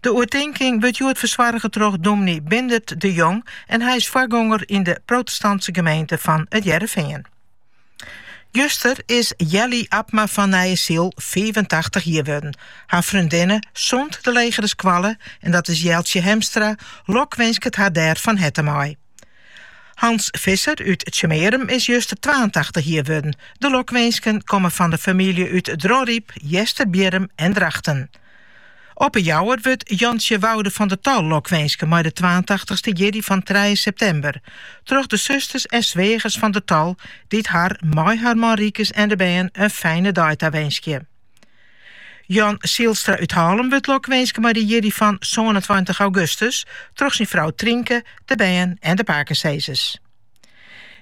De oertinking wurdt hjoed fersoarge troch dûmny Bindert de Jong en hy is foargonger yn de protestantse gemeente fan It Hearrenfean. Juster is Jelly Abma fan Nijesyl fiifentachtich jier wurden. Har freondinne sûnt de legere skoalle, en dat is Jeltsje Hemstra, lokwinskket har dêr fan herte mei. Hans Visser út Tsjummearum is juster twaentachtich jier wurden. De lokwinsken komme fan de famylje út Dronryp, Easterbierrum en Drachten. Op 'e Jouwer wurdt Jantsje Woude van der Tal lokwinske mei de twaentachtichste jierdei fan trije septimber. Troch de susters en sweagers van der Tal dy't har mei har man Rykes en de bern in fijne dei tawinskje. Jan Sylstra út Hallum wurdt lokwinske mei de jierdei fan sânentweintich augustus troch syn frou Trynke, de bern en de pakesizzers.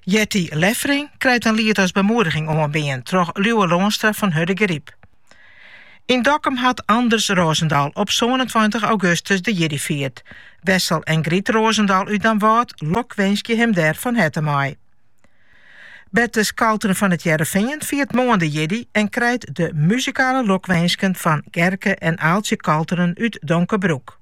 Jetty Leffering krijt in liet as bemoediging oanbean troch Liuwe Loanstra fan Hurdegaryp. Yn Dokkum hat Anders Rosendaal op sânentweintich augustus de jierdei fierd. Wessel en Griet Rosendaal út Damwâld lokwinskje him dêr fan herte mei. Bertus Kalteren fan It Hearrenfean fiert moarn de jierdei en krijt de muzikale lokwinsken fan Gerke en Aaltsje Kalteren út Donkerbroek.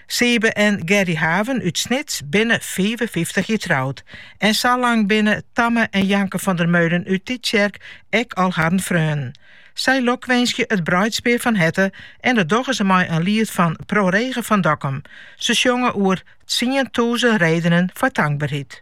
Sybe en Gerry Haven út Snits binne fiifenfyftich jier troud en sa lang binne Tamme en Janke van der Meulen út Tytsjerk ek al harren freonen. Sy lokwinskje it bruidspear fan herte en dat dogge se mei in liet fan Pro Rege fan Dokkum. Se sjonge oer tsientûzen redenen foar tankberheid.